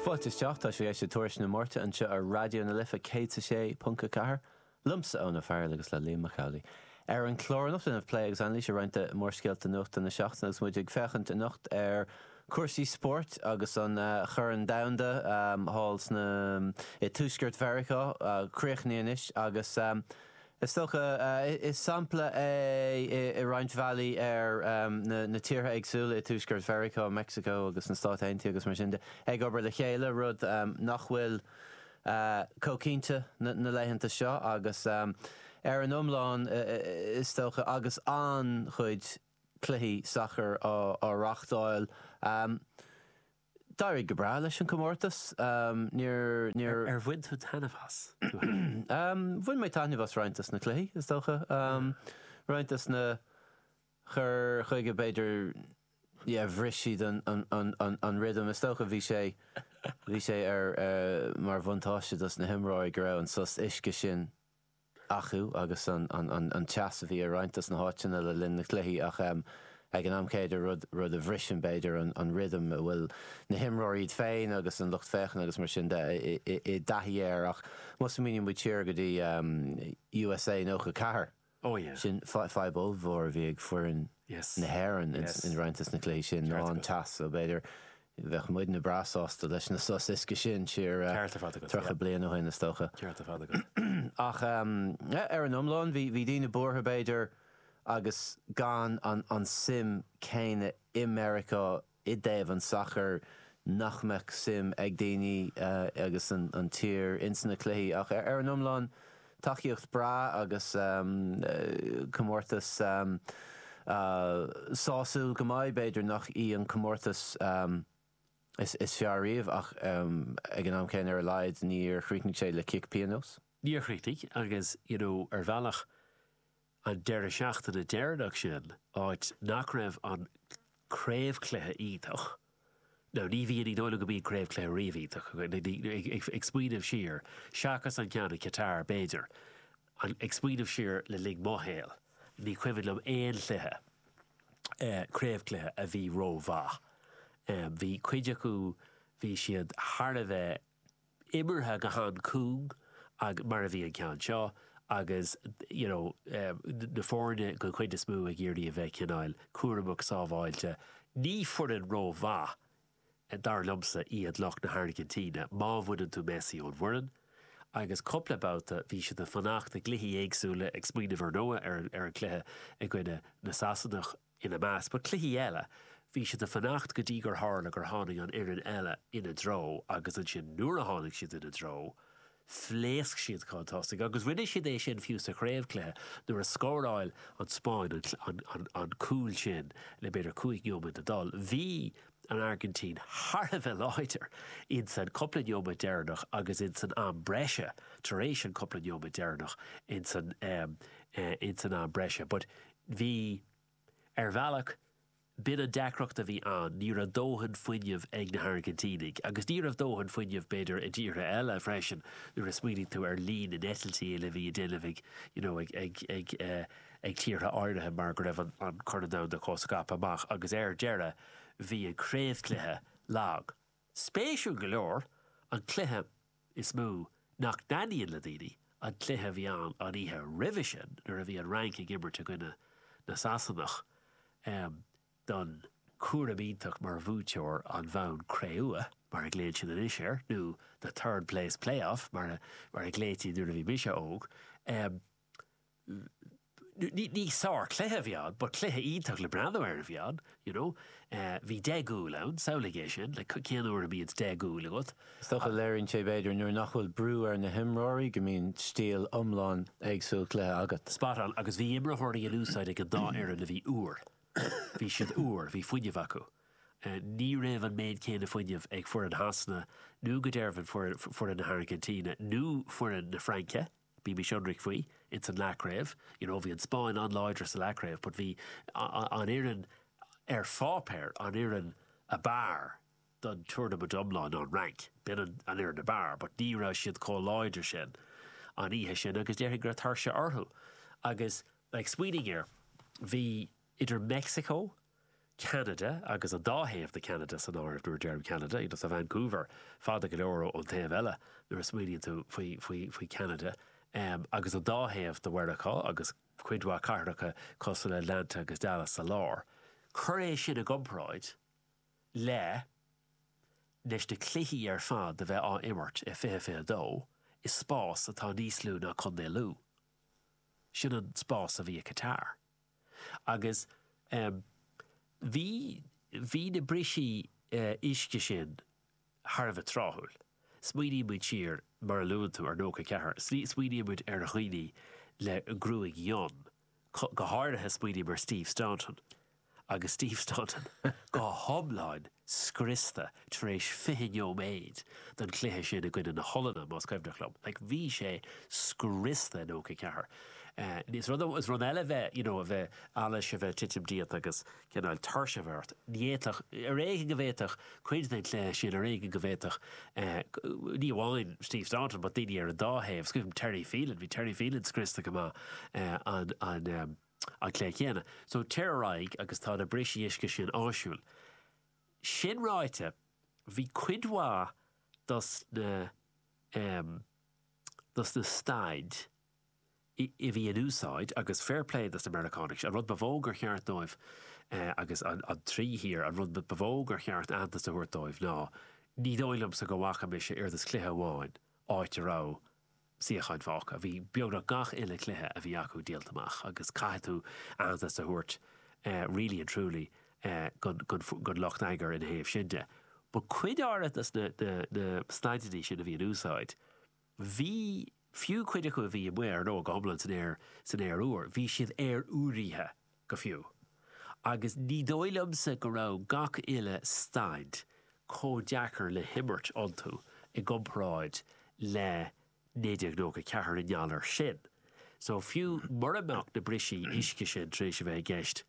Fáilte isteach, tá sibh ag éisteacht le Tuairisc na Máirte anseo ar Raidió na Life 106.4, liomsa Eoin Ó Fearghail agus le Liam Mac Amhlaigh. Ar an chlár anocht déanfaimid plé agus anailís ar roinnt de mhórscéalta nuachta na seachtaine agus muid ag féachaint anocht ar chúrsaí spóirt agus an Corn Domhanda thall i dTuaisceart Mheiriceá críochnaithe anois agus Is dócha, is sampla é i roinnt bhealaí ar na tíortha éagsúla i dTuaisceart Mheiriceá, Meicsiceo agus na Stáit Aontaithe agus mar sin de, ag obair le chéile, rud nach bhfuil chomh cinnte na laethanta seo, agus ar an iomlán, is dócha, agus an-chuid cluichí sacair á reáchtáil. D'éirigh go breá leis an gcomórtas. Níor. Ar bhain tú taitneamh as? Bhain mé taitneamh as roinnt des na cluichí, is dócha. Roinnt des na cuir chuige, b'fhéidir, yeah, bhris siad an rhythm. Is dócha, bhí sé, bhí sé ar, mar bhuntáiste dos na himreoirí go raibh an sos uisce sin, acu agus an teas a bhí i roinnt des na háiteanna le linn na gcluichí ach ag an am céanna rud rud a bhriseann b'fhéidir an rithim a bhfuil na himreoirí iad féin agus an lucht féachana agus mar sin de i dtaithí air ach má smaoiníonn muid siar go dtí USA 94 sin fadhb ollmhór a bhí ag foireann na hÉireann i roinnt des na cluichí sin ná an teas so b'fhéidir Bheadh muidne breá sásta leis na sos uisce sin siar tríocha bliain ó shin, is dócha. Ach ar an iomlán, bhí daoine buartha, b'fhéidir, agus gan an tsuim chéanna i Meiriceá i dtaobh an tsacair, nach mbeadh suim ag daoine agus sa tír ins na cluichí. Ach ar an iomlán. Tacaíocht bhreá agus comórtas sásúil go maith. B'fhéidir nach í an comórtas is fearr riamh ach ag an am céanna ar a laghad níor chríochnaigh sé le cic pionóis. Níor chríochnaigh agus, you know, ar bhealach, an deireadh seachtaine deireanach sin, áit nach raibh an craobhchluiche iontach, nó ní bhíonn, ní dóigh liom go mbíonn craobhchluiche riamh iontach, ag smaoineamh siar, seachas an ceann i Qatar, b'fhéidir, ag smaoineamh siar le linn mo shaoil, ní cuimhin liom aon chluiche, craobhchluiche a bhí rómhaith. Bhí cuid acu, bhí siad thar a bheith. imeartha go han-chúng mar a bhí an ceann seo agus you know na foirne den chuid is mó ag iarraidh a bheith cineál cúramach sábháilte. Ní foireann rómhaith, dar liomsa, iad lucht na hAirgintíne má bhaineann tú Messi ón bhfoireann agus cúpla babhta bhí siad ag fanacht i gcluichí éagsúla ag smaoineamh ar ndóigh ar an cluiche i gcoinne na Sasanach. ina measc. But cluichí eile, bhí siad a fanacht go dtí gur tharla gur tháinig an fhoireann eile ina dtreo agus ansin nuair a tháinig siad ina dtreo, phléasc siad chun tosaigh agus rinne siad é sin fiú sa chraobhchluiche nuair a scóráil an Spáinn an cúl sin le b'fhéidir cúig neomat ag dul. Bhí an Airgintín thar a bheith láidir in san cúpla neomat deireanach agus in san am breise tar éis an cúpla neomat deireanach in san am breise but Bhí, ar bhealach. B'in an deacracht a bhí ann, ní raibh dóthain fuinnimh ag na hAirgintínigh. Agus ní raibh dóthain fuinnimh, b'fhéidir, i dtíortha eile freisin, nuair a smaoiníonn tú ar líon na n-eitiltí a bhí á ndéanamh ag, you know, ag, ag, ag, ag tíortha áirithe mar go raibh an Corn Domhanda chomh scaipthe amach. Agus ar deireadh, bhí an craobhchluiche lag. Spéisiúil go leor, an cluiche is mó nach dtaitníonn le daoine, an cluiche a bhí ann an oíche roimhe sin nuair a bhí an Fhrainc ag imirt i gcoinne na Sasanach don dúshlán iontach mar bhuaiteoir an bhonn cré-umha, mar a ghlaonn siad anois air, nó the third place playoff, mar a ghlaoití nuair a bhí mise óg. ní sár chluiche a bhí ann but cluiche iontach le breathnú air a bhí ann you know bhí deich gcúl ann, samhlaigh é sin like cén uair a mbíonns deich gcúl agat? Is dócha, léiríonn sé b'fhéidir nuair nach bhfuil brú ar na himreoirí go mbíonn stíl iomlán éagsúil cluiche agat. Spot on agus bhí imreoirí in úsáid ag an dá fhoireann a bhí úr, bhí siad úr, bhí fuinneamh acu. Ní raibh an méid céanna fuinnimh ag foireann Shasana nó go deimhin foireann na hAirgintíne nó foireann na Fraince, Bímis ionraic faoi, ins an Leathchraobh, you know, bhí an Spáinn an-láidir sa Leathchraobh but bhí an fhoireann ar pháipéar, an fhoireann ab fhearr don tournament iomlán ná an Fhrainc. B'in an fhoireann ab fhearr but ní raibh siad comh láidir sin an oíche sin agus déarfainn go raibh tuirse orthu agus, like, smaoinigh air, bhí. idir Meicsiceo, Ceanada agus an dá thaobh de Cheanada san áireamh nuair a deirim Ceanada, you know, tá Vancouver fada go leor ón taobh eile nuair a smaoiníonn tú faoi Cheanada, agus an dá thaobh de Mheiriceá agus cuid mhaith cathracha cosúil le Atlanta agus Dallas sa lár. Cuir é sin i gcomparáid leis na cluichí ar fad a bheith á imirt i 2022 i spás atá níos lú ná Contae Lú. Sin an spás a bhí i Qatar. agus bhí bhí na bristí uisce sin thar a bheith tráthúil. Smaoiníonn muid siar, mar a luann tú, ar '94, smaoiníonn muid ar dhaoine le gruaig fhionn, go háirithe smaoiním ar Steve Staunton, agus Steve Staunton go hiomlán, scriosta tar éis fiche neoméid den chluiche sin i gcoinne na hOllainne, más cuimhneach liom. Like, bhí sé scriosta i nócha a ceathair. Is rud is rud eile a bheith, you know, a bheith, allas, a bheith titim díot agus cineál tuirse a bheith ort. Ní fhéadfadh, ar éigean go bhféadfadh cuid den chluiche sin, ar éigean go bhféadfadh, ní amháin Steve Staunton but daoine ar an dá thaobh, sílim Terry Phelan, bhí Terry Phelan scriosta go maith an, an, an, an chlé chéanna. So téir ar aghaidh agus tá na brisí uisce sin áisiúil. Sin ráite, bhí cuid mhaith dos na em, dos na staidí a bhí in úsáid, agus fair play dos na Meiriceánaigh, an rud ba mhó gur cheart dóibh, eh, agus an, an trí thír, an rud ba mhó gur cheart aitheantas a thabhairt dóibh ná, ní dóigh liomsa go bhfaca mise aon chluiche amháin áit a raibh suíocháin fágtha. Bhí beagnach gach uile chluiche a bhí acu díolta amach agus caithfidh tú aitheantas a thabhairt really and truly don lucht eagair ina thaobh sin de. But cuid áirithe dos na staideannaí sin a bhí in úsáid, bhí, fiú cuid acu a bhí amuigh ar ndóigh go hiomlán san aer úr, bhí siad aer-úraithe go fiú, agus ní dóigh liomsa go raibh gach uile staid chomh deacair le himirt iontu i gcomparáid le 1994 i ngeall air sin. So, fiú mura mbeadh na brisí uisce sin tar éis a bheith i gceist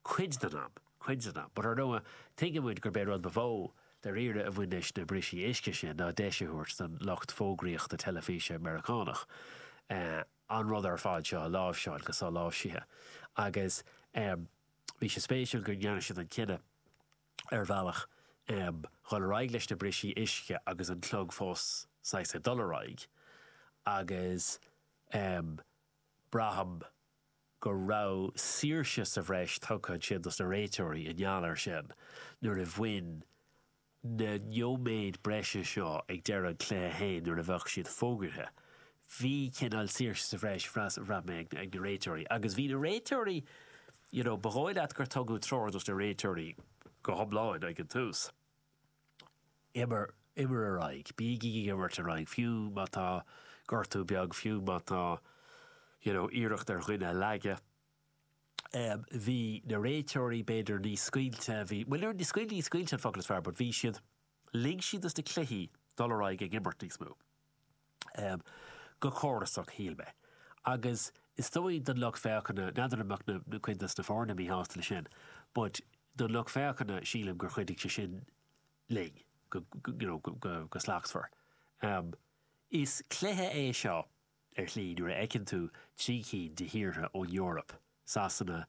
cuid den am, cuid den am, but ar ndóigh, tuigeann muid gurb é an rud ba mhó, dairíre, a bhain leis na brisí uisce sin ná deis a thabhairt don lucht fógraíochta teilifíse Meiriceánach, eh, an rud ar fad seo a láimhseáil go soláimhsithe agus bhí sé spéisiúil go ndearna siad an cinneadh ar bhealach dhul ar aghaidh leis na brisí uisce agus an clog fós saghas ag dul ar aghaidh agus braithim go raibh saoirse sa bhreis tugtha ansin dos na réiteoirí i ngeall air sin nuair a bhain na nóiméid breise seo ag deireadh an chluiche féin nuair a bheadh siad fógartha. Bhí cineál saoirse sa bhreis, bhraith mé ag ag na réiteoirí agus bhí na réiteoirí, you know, ba dhóigh leat gur tugadh treoir dos na réiteoirí go hiomlán ag an tús, imir, imir ar aghaidh, bígí ag imirt ar aghaidh, fiú má tá gortú beag, fiú má tá, you know, iarracht ar dhuine a leagadh, bhí na réiteoirí b'fhéidir níos scaoilte, bhí, bhuel, níor, scaoilte, níos scaoilte an focal is fearr, but bhí siad, lig siad dos na cluichí dul ar aghaidh ag imirt níos mó, go córasach, shíl mé. Agus is dóigh don lucht féachana, n'fheadar an mbeadh na, cuid dos na foirne míshásta le sin, but don lucht féachana, sílim gur chuidigh sé sin linn, go, you know, go slachtmhar. Is cluiche é seo ar shlí, nuair a fheiceann tú trí cinn de thíortha ón Eoraip, Sasana,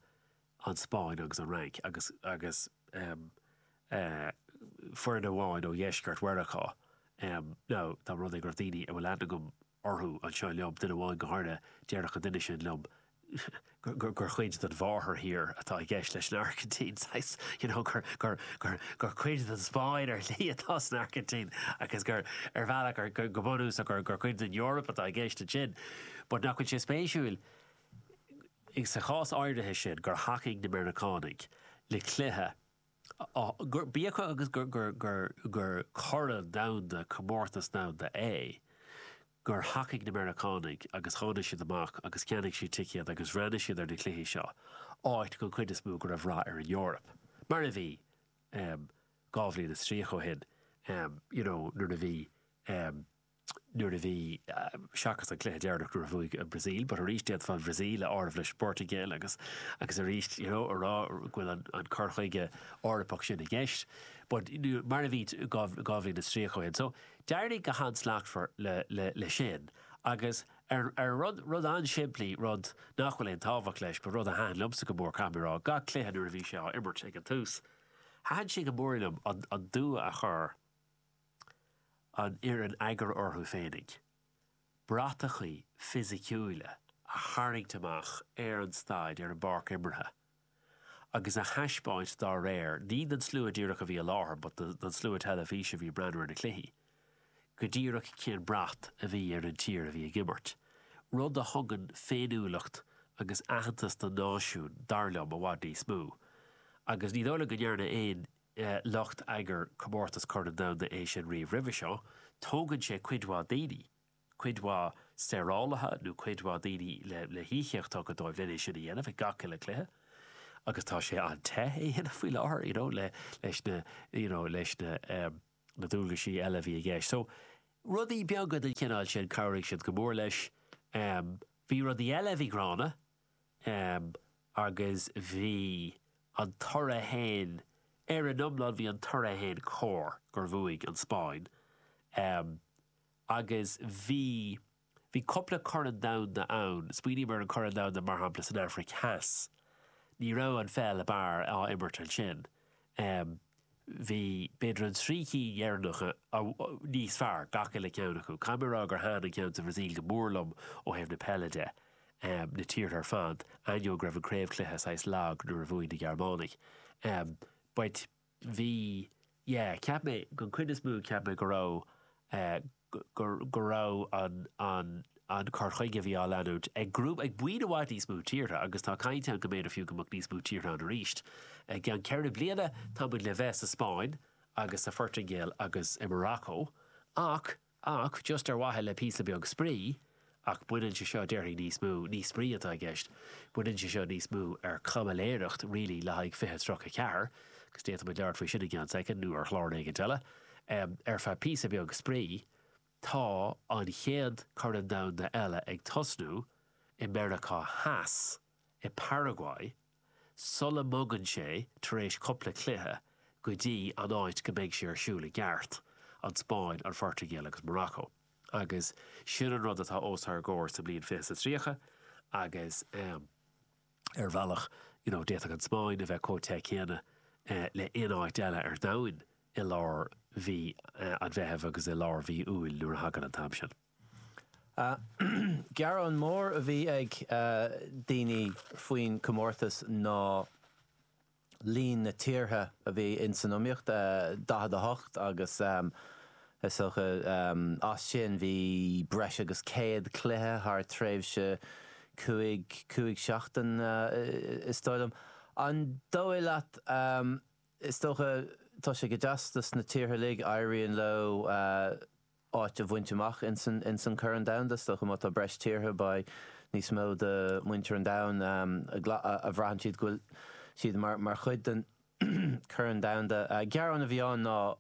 an Spáinn agus an Fhrainc, agus agus foireann amháin ó dheisceart Mheiriceá, nó tá rud ag roinnt daoine a bhfuil aithne agam orthu anseo liom, duine amháin go háirithe, déarfadh an duine sin liom gur cuid den mháthair thír atá i gceist leis an Airgintín, saghas, you know, gur, gur, gur, gur cuid den Spáinn ar shlí atá san Airgintín agus gur, ar bhealach, gur, gur, go bunúsach, gur, gur cuid den Eoraip atá i gceist ansin. But nach bhfuil sé spéisiúil, sa chás áirithe sin, gur thacaigh na Meiriceánaigh le cluiche, gur, bíodh agus gur, gur, gur, gur, gur corn domhanda, comórtas domhanda é, gur thacaigh na Meiriceánaigh agus tháinig siad amach agus cheannaigh siad ticéid agus bhreathnaigh siad ar na cluichí seo, áit gon chuid is mó go raibh rath ar an Eoraip, mar a bhí, em, dhá bhliain is tríocha ó shin, em, you know, nuair a bhí, em, nuair a bhí, em, seachas an cluiche deireanach nuair a bhuaigh an Bhrasaíl, but arís d'fhéadfá an Bhrasaíl a áireamh leis an bPortaingéil agus, agus arís, you know, a rá go bhfuil an, an cur chuige Eorpach sin i gceist, but, mar a bhí dhá, dhá bhliain is tríocha ó shin. So, D'éirigh go han-slachtmhar le sin agus ar rud, rud an-simplí, rud nach bhfuil aon tábhacht leis, but rud a thaitin liomsa go mór, caithfidh mé a rá, gach cluiche nuair a bhí sé á imirt ag an tús, thaitin sé go mór liom an dua a chuir an fhoireann eagair orthu féinig bratachaí fisiciúila a tharraingt amach ar an staid, ar an bpáirc imeartha. agus a thaispeáint dá réir, ní don slua díreach a bhí i láthair but don slua teilifíse a bhí ag breathnú ar na cluichí, go díreach cén brat a bhí ar an tír a bhí ag imirt. Rud a thugann féiniúlacht agus aitheantas don náisiún, dar liom, i bhfad níos mó. Agus ní dóigh liom go ndearna aon lucht eagair comórtas Corn Domhanda é sin riamh roimhe seo. Tógann sé cuid mhaith daoine. cuid mhaith saorálaithe nó cuid mhaith daoine le híocaíochtaí dóibh len é sin a dhéanamh ag gach uile cluiche agus tá sé an-te é a dhéanamh faoi láthair you know leis na you know leis na na dualgaisí eile a bhí i gceist so rudaí beaga den chineál sin chabhraigh siad go mór leis um bhí rudaí eile a bhí gránna um agus bhí an toradh féin ar an iomlán bhí an toradh féin cóir gur bhuaigh an Spáinn um Agus bhí. Bhí cupla corn domhanda ann. Smaoiním ar an gcorn domhanda, mar shampla, san Aifric Theas. Ní raibh an pheil ab fhearr á imirt ansin. Bhí, b'fhéidir, an trí cinn dheireanacha níos fearr, gach uile cheann acu. Caithfidh mé a rá gur thaitin an ceann sa Bhrasaíl go mór liom ó thaobh na peile de, na tíortha ar fad, ainneoin go raibh an craobhchluiche saghas lag nuair a bhuaigh na Gearmánaigh. But. bhí, yeah, cheap mé, den chuid is mó, cheap mé go raibh, eh, go, go raibh an, an, an cur chuige a bhí á leanúint ag grúpa, ag buíon i bhfad níos mó tíortha, agus tá caint ann go mb'fhéidir fiú go mbeadh níos mó tíortha ann arís i gceann ceithre bliana, tá muid le bheith sa Spáinn agus sa Phortaingéil agus i Morocco, ach, Ach just ar mhaithe le píosa beag spraoi, ach baineann sé seo, déarfainn, níos mó, ní spraoi atá i gceist, baineann sé seo níos mó ar chaimiléireacht really le haghaidh fiche tríocha a ceathair, agus d'fhéadfadh muid labhairt faoi sin i gceann soicind nó ar chlár éicint eile, ar feadh píosa beag spraoi, tá an chéad Chorn Domhanda eile ag tosnú i Meiriceá Theas, i bParaguay. sula mbogann sé, tar éis cupla cluiche, go dtí an áit go mbeidh sé ar siúl i gceart, an Spáinn, an Phortaingéil agus Morocco. Agus sin an rud atá os ár gcomhair sa mbliain fiche is a tríocha agus ar bhealach, you know, d'fhéadfadh an Spáinn a bheith comh te céanna le aon áit eile ar domhain i lár mhí an Mheithimh agus i lár mhí Iúil nuair a thagann an t-am sin. Gearán mór a bhí ag daoine faoin chomórtas ná líon na tíortha a bhí ins san iomaíocht, 48, agus is dócha as sin bhí breis agus 100 cluiche thar tréimhse cúig, cúig sheachtain is dóigh liom. An dóigh leat, is dócha, tá sé go deas dos na tíortha uilig, éiríonn leo, áit a bhaint amach ins an Corn Domhanda. Is dócha má tá breis tíortha, beidh níos mó de mhuintir an domhain a bhraitheann siad go bhfuil siad ar, mar chuid den Chorn Domhanda. Gearán a bhí ann ná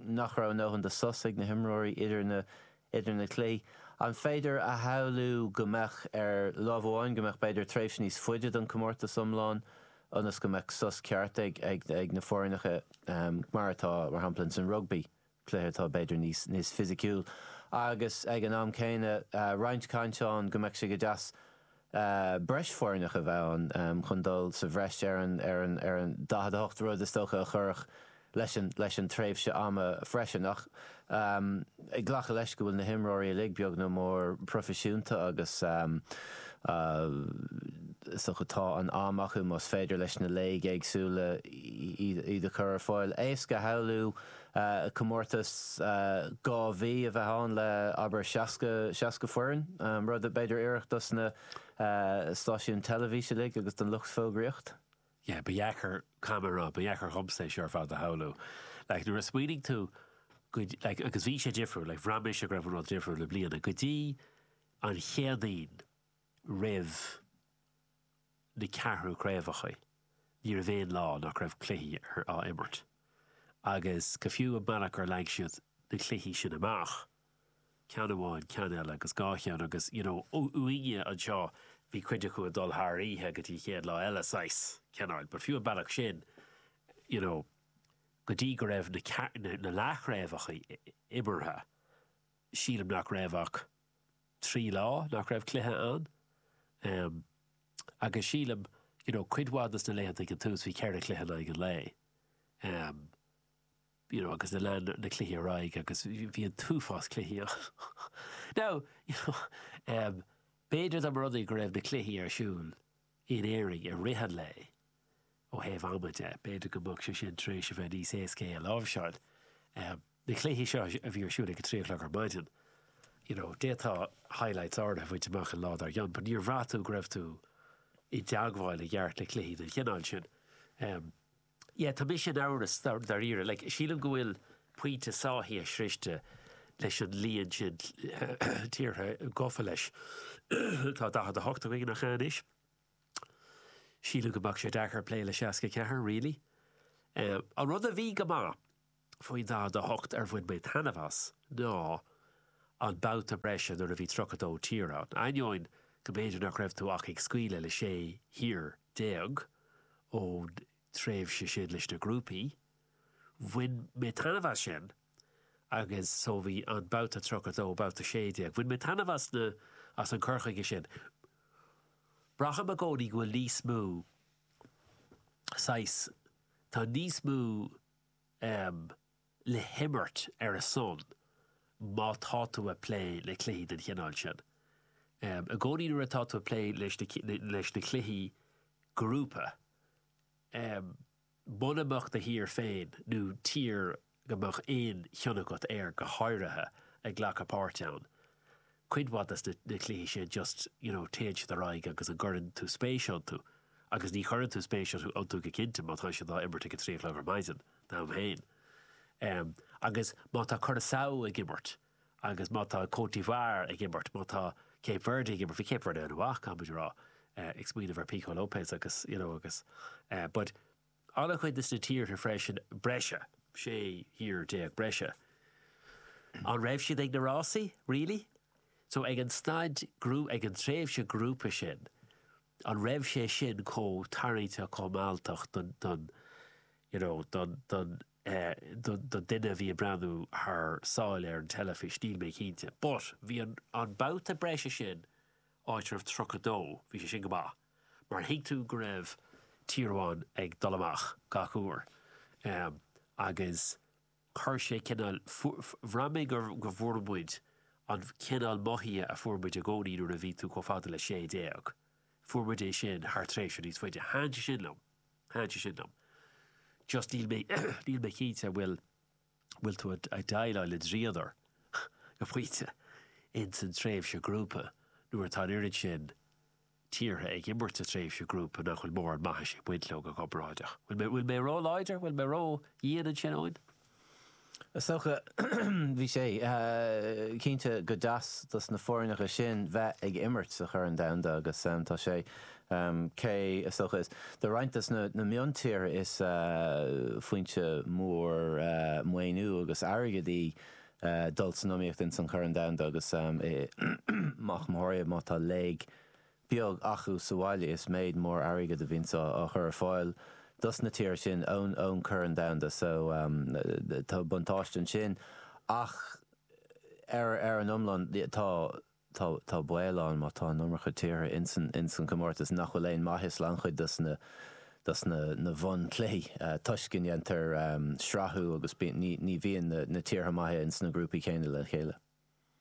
nach raibh a ndóthain de sos ag na himreoirí idir na cluichí. An féidir a shamhlú go mbeadh, ar láimh amháin, go mbeadh b'fhéidir tréimhse níos faide don comórtas iomlán ionas go mbeadh sos ceart ag na foirneacha, mar atá, mar shampla, ins an rugbaí? cluiche atá b'fhéidir níos fisiciúil agus ag an am céanna roinnt cainte ann go mbeadh sé go deas, breis foirneach a bheith ann chun dul sa bhreis ar an 48 rud is dócha a chuirfeadh leis an tréimhse ama freisin. Ach ag glacadh leis go bhfuil na himreoirí uilig beag nó mór proifisiúnta agus is dócha tá an t-am acu más féidir leis na léig éagsúla iad a chur ar fáil, éasca a shamhlú comórtas dhá mhí a bheith ann le, abair, seasca, seasca foireann, rud b'fhéidir a oirfeadh dos na stáisiúin teilifíse uilig agus don lucht fógraíocht. yeah, ba dheacair, caithfidh mé a rá, ba dheacair dhomsa é seo ar fad a shamhlú. Like, nuair a smaoinigh tú go, like, agus bhí sé difriúil, like, bhraith mise go raibh an rud difriúil i mbliana, go dtí an Chéadaoin roimh, na ceathrú craobhachaí, ní raibh aon lá nach raibh cluichí á imirt, agus go fiú an bealach ar leag siad na cluichí sin amach, ceann amháin, ceann eile, agus dhá cheann, agus you know uainne anseo, bhí cuid acu ag dul thar oíche go dtí an chéad lá eile saghas cineáil, but fiú an bealach sin, you know go dtí go raibh na leathchraobhachaí imeartha, sílim nach raibh ach. trí lá nach raibh cluiche ann em agus sílim you know cuid mhaith de na laethanta ag an tús bhí ceithre chluiche in aghaidh an lae em you know agus lean na cluichí ar aghaidh agus bhí an t-uafás cluichí ann now you know em b'fhéidir dá mba rud é go raibh na cluichí ar siúl in Éirinn i rith an lae ó thaobh ama de. B'fhéidir go mbeadh sé sin tar éis a bheith níos éasca é a láimhseáil. Na cluichí seo a bhí ar siúl ag a trí a chlog ar maidin, you know, d'fhéadfá highlights áirithe a fháil amach an lá dár gcionn but níor bhraith tú go raibh tú i dteagmháil i gceart le cluichí den chineál sin. Yeah, tá mise in amhras dáiríre, like, sílim go bhfuil pointe sáithithe sroichte leis an líon sin tíortha gafa leis. Tá 48 againn ach anois. Sílim go mbeadh sé deacair plé le 64, really. An rud a bhí go maith faoin 48 ar bhain mé taitneamh as ná an babhta breise nuair a bhí 32 tír ann, ainneoin go mb'fhéidir nach raibh tú ach ag scaoileadh le 16 thír ón tréimhse sin leis na grúpaí. Bhain mé taitneamh as sin. agus so bhí an babhta 32, babhta 16. Bhain mé taitneamh as na, as an cur chuige sin. Braithim i gcónaí go bhfuil níos mó, saghas, tá níos mó ehm le himirt ar a son má tá tú a' plé le cluichí den chineál sin. Ehm, i gcónaí nuair atá tú a' plé leis na, leis na cluichí grúpa, ehm, Muna mbeadh do thír féin nó tír go mbeadh aon chion agat uirthi go háirithe ag glacadh páirt ann. Cuid mhaith de na cluichí sin just, you know, téann siad ar aghaidh agus an gcuireann tú spéis iontu? Agus ní chuireann tú spéis iontu go cinnte má tá siad á imirt ag a trí a chlog ar maidin, dom féin. Agus má tá Curaçao ag imirt, Agus má tá Côte d'Ivoire ag imirt, má tá Cape Verde ag imirt, bhí Cape Verde an-mhaith, caithfidh muid a rá, ag smaoineamh ar Pico Lopes agus, you know, agus eh, but an-chuid des na tíortha freisin breise, 16 thír breise, an raibh siad ag na rásaí, really? So ag an staid, ag an tréimhse grúpa sin, an raibh sé sin chomh tarraingteach, chomh mealltach don, don, you know, don, don, do dhuine a bhí ag breathnú ó thar sáile ar an teilifís, níl mé cinnte. But, bhí an, an babhta breise sin, áit a raibh tríocha dó, bhí sé sin go maith, mar thuig tú go raibh tír amháin ag dul amach gach uair. Em, agus chuir sé cineál, fuair, bhraith mé gur, go bhfuair muid an cineál mothúcháin a fuair muid i gcónaí nuair a bhí tú chomh fada le sé déag, fuair muid é sin thar tréimhse níos faide. Thaitin sé sin liom. Thaitin sé sin liom. Just níl mé, níl mé cinnte an bhfuil, an bhfuil tú ag déileáil le dríodar go pointe ins an tréimhse ghrúpa nuair atá an oiread sin tíortha ag imirt sa tréimhse ghrúpa nach bhfuil mórán maithis ag baint leo go comparáideach. An bhfuil mé ró-láidir, an bhfuil mé ró-dhian ansin, Eoin? Is dócha, bhí sé, cinnte go deas dos na foirneacha sin bheith ag imirt sa Chorn Domhanda agus tá sé, cé, is dócha, is do roinnt dos na miontíortha, is foinse mhór maoiniú agus airgid é dul san iomaíocht ins an Chorn Domhanda agus i, go mór mór má tá léig beag acu sa bhaile is méid mór airgid a bhíonns á chur ar fáil dos na tíortha sin ón gCorn Domhanda so tá buntáiste ansin ach ar an iomlán tá baol ann má tá an iomarca tíortha ins an gcomórtas nach bhfuil aon mhaith ins an-chuid dos na bunchluichí toisc go ndéantar srathú agus ní bhíonn na tíortha maithe ins na grúpaí céanna le chéile.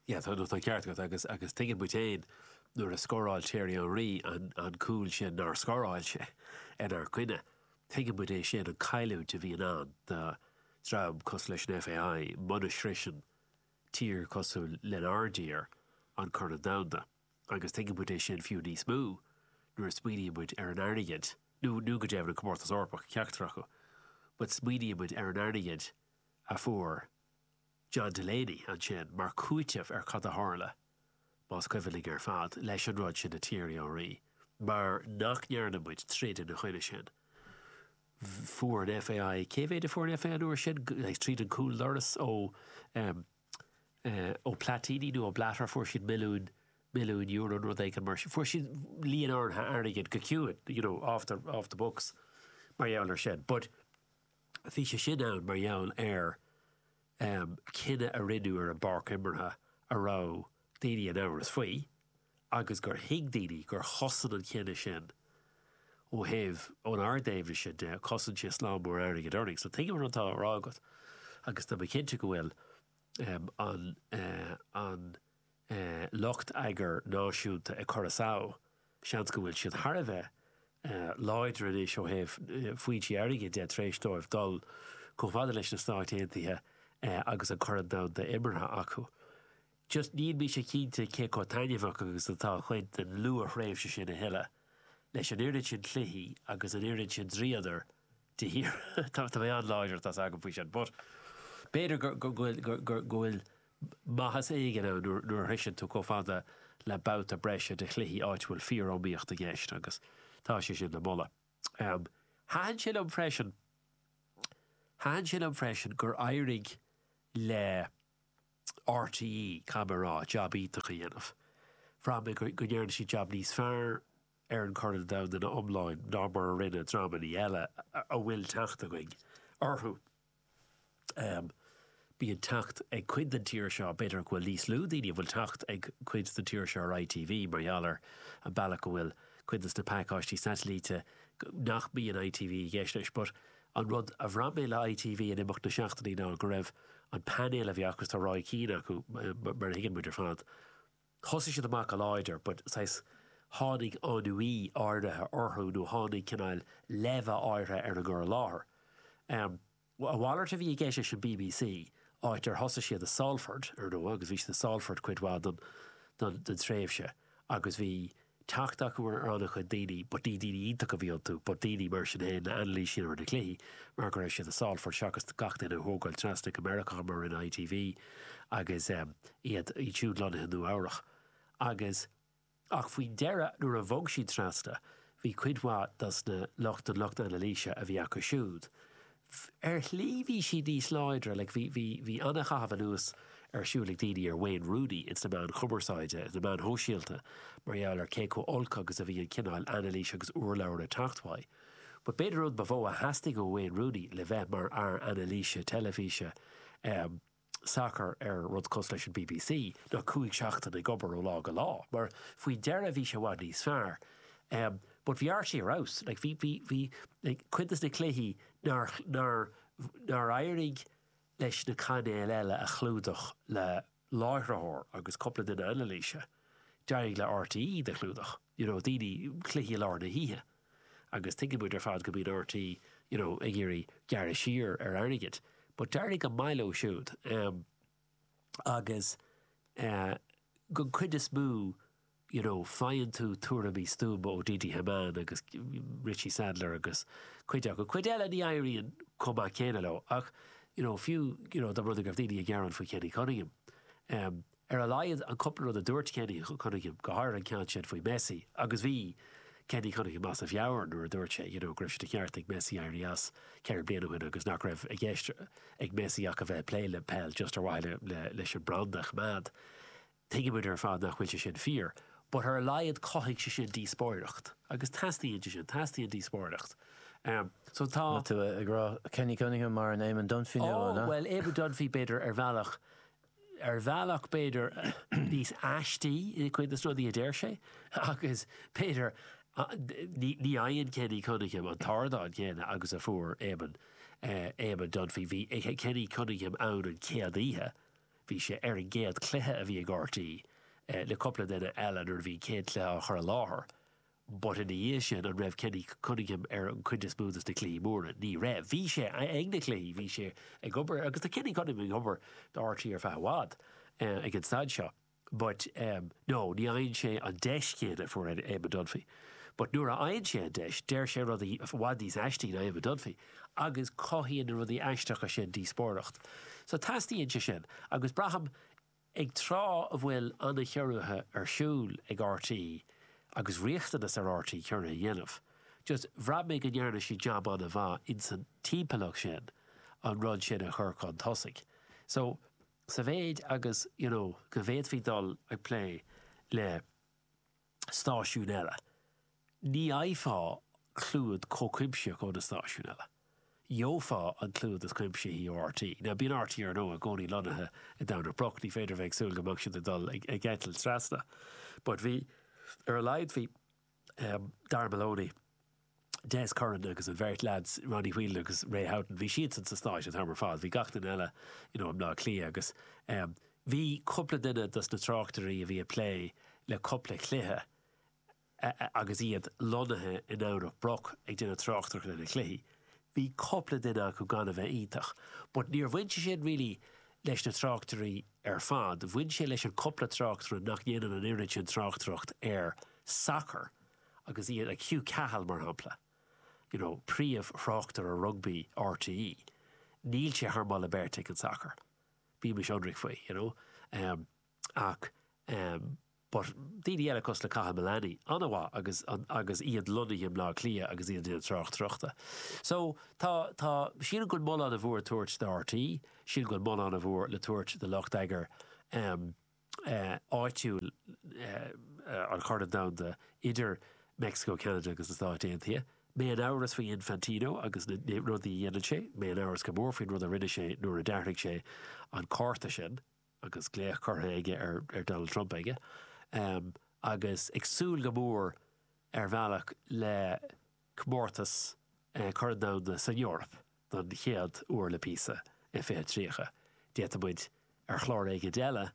Tá an ceart agat agus tuigeann muid féin nuair a scóráil Thierry Henry an cúl sin nár scóráil sé inár gcoinne. Tuigeann muid é sin, an cailliúint a bhíonn ann do dhream cosúil leis an FAI muna shroiseann tír cosúil lenár dtír an Corn Domhanda agus tuigeann muid é sin fiú níos mó nuair a smaoiníonn muid ar an airgead, nó go deimhin an Comórtas Eorpach, ceachtar acu, but smaoiníonn muid ar an airgead a fuair John Delaney ansin mar chúiteamh ar cad a tharla, más cuimhin linn ar fad, leis an rud sin le Thierry Henry, mar nach ndearna muid troid ina choinne sin. Fuair an FAI, cé mhéid a fuair an FAI an uair sin? Tríd an gcúldoras ó Platini nó ó Blatter fuair siad milliún, milliún euro nó rud éigin mar sin. Fuair siad líon áirithe airgid go ciúin, you know, off the, off the books mar gheall ar sin. But. Bhí sé sin ann mar gheall ar chinneadh a rinneadh ar an bpáirc imeartha a raibh daoine in amhras faoi agus gur thuig daoine gur chosain an cinneadh sin ó thaobh, ónár dtaobhna de, chosain sé slám mór airgid orainn. So tuigim an rud atá á rá agat agus tá mé cinnte go bhfuil an. lucht eagair náisiúnta i Curaçao, seans go bhfuil siad thar a bheith láidir anois ó thaobh foinsí airgid de tar éis dóibh dul chomh fada leis na Stáit Aontaithe agus an Corn Domhanda imeartha acu. Just níl mise cinnte cé chomh taitneamhach agus atá cuid den luath-thréimhse sin a thuilleadh, leis an oiread sin cluichí agus an oiread sin dríodar de shíor. Tá mé an-láidir, tá 's agam faoi sin, but b'fhéidir go bhfuil. maitheas éigin ann nuair a shroicheann tú chomh fada le babhta breise de chluichí áit a bhfuil fíoriomaíocht i gceist agus tá sé sin le moladh. Thaitin sé liom freisin, thaitin sé liom freisin gur éirigh le RTÉ, caithfidh mé a rá, jab iontach a dhéanamh. Bhraith mé go ndearna siad jab níos fearr ar an gCorn Domhanda ina iomláin ná mar a rinne dreamannaí eile a bhfuil teacht againn orthu. Bíonn teacht ag cuid den tír seo, b'fhéidir go bhfuil níos lú daoine a bhfuil teacht ag cuid den tír seo ar ITV mar gheall ar an mbealach go bhfuil cuid dos na pacáistí satailíte nach mbíonn ITV i gceist leis. But an rud a bhraith mé le ITV in imeacht na seachtainí ná go raibh an painéal a bhí acu, tá Roy Keane acu mar a thuigeann muid ar fad, Thosaigh siad amach go láidir but saghas tháinig ennui áirithe orthu nó tháinig cineál leimhe áirithe ar an gcur i láthair. A mhalairt a bhí i gceist leis an BBC, áit ar thosaigh siad i Salford, ar ndóigh, agus bhí siad i Salford cuid mhaith den tréimhse agus bhí, teacht acu ar an-chuid daoine, but ní daoine iontacha a bhí iontu, but daoine, mar sin féin, le hanailísiú ar na cluichí mar go raibh siad i Salford seachas gach duine a thógáil trasna go Meiriceá mar a rinne ITV agus iad siúd lonnaithe i Nua-Eabhrac agus. Ach faoin deireadh, nuair a bhog siad trasna, bhí cuid mhaith dos na lucht, den lucht anailíse a bhí acu siúd, Ar shlí bhí siad níos láidre, bhí an-chaitheamh anuas ar siúl ag daoine ar Wayne Rooney ins na meáin chumarsáide, ins na meáin shóisialta, mar gheall ar cé chomh olc agus a bhí an cineál anailís agus urlabhra ag teacht uaidh. But b'fhéidir an rud ba mhó a theastaigh ó Wayne Rooney le bheith mar fhear anailíse teilifíse, eh, sacar ar rud cosúil leis an bbc ná cúig seachtaine ag obair ó lá go lá mar faoi deireadh bhí sé i bhfad níos fearr but bhí RTÉ ar fheabhas like bhí bhí bhí like cuid dos na cluichí nár nár nár éirigh leis na cainéil eile a chlúdach le láithritheoir agus cúpla duine anailíse d'éirigh le RTÉ iad a chlúdach you know daoine cluichí i lár na hoíche agus tuigeann muid ar fad go mbíonn RTÉ, you know, ag iarraidh gearradh siar ar airgead, but d'éirigh go maith leo siúd, um, agus, uh, don chuid is mó, you know, faigheann tú tuairimí stuama ó Didi Hamann agus Richie Sadlier agus cuid acu. Cuid eile ní éiríonn chomh maith céanna leo, ach, you know, fiú, you know, dom ba thrua go raibh daoine ag gearán faoi Kenny Cunningham, um, Ar a laghad, an cúpla rud a dúirt Kenny Cunningham, go háirithe an ceann sin faoi Messi, agus bhí Kenny Cunningham as a mheabhair nuair a dúirt sé, you know, go raibh sé de cheart ag Messi éirí as ceithre bliana ó shin agus nach raibh i gceist ag Messi ach a bheith ag plé le peil just ar mhaithe leis an mbranda a choimeád. Tuigeann muid ar fad nach bhfuil sé sin fíor, but ar a laghad chothaigh sé sin díospóireacht agus teastaíonn sé sin, teastaíonn díospóireacht. So tá. Tá tú ag rá Kenny Cunningham mar an Éamon Dunphy nua, an ea? Oh, bhuel, Éamon Dunphy, b'fhéidir, ar bhealach. Ar bhealach, b'fhéidir, níos aistí i gcuid de na rudaí a deir sé, agus b'fhéidir, ní fhaigheann Kenny Cunningham an t-ardán céanna agus a fuair Éamonn, Éamonn Dunphy. Bhí Kenny Cunningham ann an chéad oíche, bhí sé ar an gcéad chluiche a bhí ag rte le cúpla duine eile nuair a bhí an chéad chluiche á chur i láthair. But ina dhiaidh sin, an raibh Kenny Cunningham ar an gcuid is mó dos na cluichí móra? Ní raibh. Bhí sé ag na cluichí, bhí sé ag obair, agus tá Kenny Cunningham ag obair do rte ar feadh i bhfad, ag an staid seo. But no, ní fhaigheann sé an deis chéanna a fuair Eamon Dunphy. But nuair a fhaigheann sé an deis, deir sé rudaí i bhfad níos aistí ná Eamon Dunphy, agus cothaíonn na rudaí aisteacha sin díospóireacht. So teastaíonn sé sin, agus braithim, Ag tráth a bhfuil an-chiorruithe ar siúl ag rte agus riachtanas ar rte ciorruithe a dhéanamh, just bhraith mé go ndearna siad jab an-mhaith insan timpeallacht sin an rud sin a chur chun tosaigh. So, sa mhéid agus, you know, go bhféadfaí dul ag plé le, stáisiúin eile, ní fhaighfeá clúid chomh cuimsitheach ó na stáisiúin eile. Gheofá an clúid is cuimsithí ó RTÉ. Now bíonn RTÉ ar ndóigh i gcónaí lonnaithe i nDomhnach Broc, ní féidir a bheith ag súil go mbeadh siad ag dul ag eitilt trasna. But bhí, ar a laghad bhí Dara Maloney, Des Curran agus an bheirt leads, Ronnie Whelan agus Ray Houghton, bhí siadsan sna Stáit an t-am ar fad, bhí gach duine eile you know i mBleá Cliath agus em bhí cúpla duine dos na tráchtairí a bhí ag plé le cúpla cluiche agus iad lonnaithe i nDomhnach Broc ag déanamh tráchtaireachta ar na cluichí, bhí cúpla duine acu gan a bheith iontach but níor bhain sé sin really leis na tráchtairí ar fad, bhain sé leis an cúpla tráchtaire nach ndéanann an oiread sin tráchtaireacht ar sacar. agus iad ag, Hugh Cahill, mar shampla, you know príomh-thráchtaire rugbaí rte, níl sé thar mholadh beirte ag an sacar, bímis ionraic faoi, you know em. Ach em. But daoine eile cosúil le Cathal Mullaney, an-mhaith agus agus iad lonnaithe i mBleá Cliath agus iad ag déanamh tráchtaireachta. So tá tá sílim go bhfuil moladh ana mhór le tabhairt do rte, sílim go bhfuil moladh ana mhór le tabhairt do lucht eagair em, áitiúil an Chorn Domhanda idir Meicsiceo, Ceanada agus na Stáit Aontaithe. Mé in amhras faoi Infantino agus na rudaí a dhéanann sé. Mé in amhras go mór faoin rud a rinne sé nuair a d'athraigh sé an cárta sin agus glaoch curtha aige ar Donald Trump aige. Agus ag súil go mór, ar bhealach, le. comórtas Corn Domhanda san Eoraip don chéad uair le píosa i 2030. D'fhéadfadh muid, ar chlár éigin eile,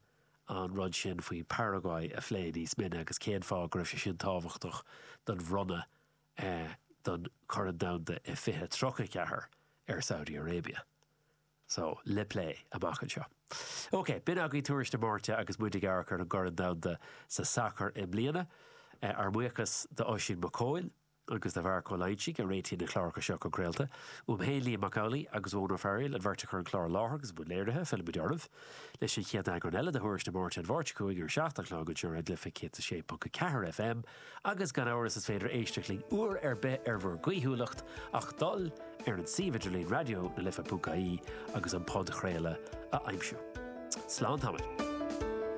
an rud sin faoi Paraguay a phlé níos mine agus cén fáth go raibh sé sin tábhachtach don bhronnadh don Chorn Domhanda i 2034 ar Saudi Arabia. So, le plé amach anseo. OK, b'in agaibh tuairisc na Máirte agus muid ag amharc ar an gCorn Domhanda sa sacar i mbliana. Ár mbuíochas d'Oisín Mac Cóil agus do Mharc Ó Loingsigh a réitigh na cláracha seo chun craolta. Uaim féin, Liam Mac Amhlaigh agus Eoin Ó Fearghaíl, an bheirt a chuir an clár i láthair agus i mbun léirithe, fillfimid oraibh leis an chéad eagrán eile de thuairisc na Máirte an Mháirt seo chugainn ar a 7 a chlog anseo ar Raidió na Life 106.4 FM. Agus gan amhras is féidir éisteacht linn uair ar bith ar bhur gcaoithiúlacht ach dul ar an suíomh idirlín Raidió na Life ponc ie agus an podchraoladh a aimsiú. Slán tamall.